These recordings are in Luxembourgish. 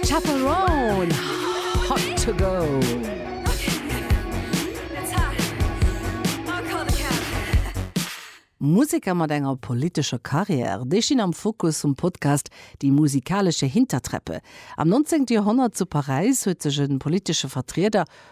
Chaperone, hot to go! Museker mat enger politescher Karriär, déi stinn am Fokus vum Podcast Die musikalische Hintertreppe. Am 19. Joerhonnert zu Paräis huet sech e politesche Vertrieder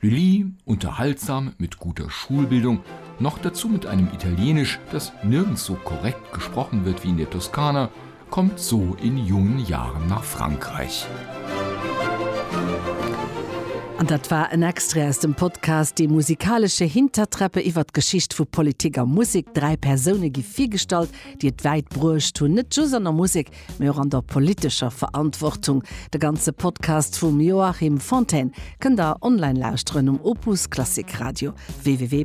Lully, unterhaltsam mit guter Schulbildung, noch dazu mit einem Italienisch, das nirgends so korrekt gesprochen wird wie in der Toskana, kommt so in jungen Jahren nach Frankreich. An dat war en Extrait aus dem Podcast Die musikalische Hintertreppe iwwert d'Geschicht vu Politik a Musek. Dräi Persoune gi virgestallt, déi et wäit bruecht hunn, net just an der Musek, Politik, mee och an der politescher Verantwortung. De ganze Podcast vum Joachim Fontaine kënnt der online lauschteren um Opus Klassik Radio www.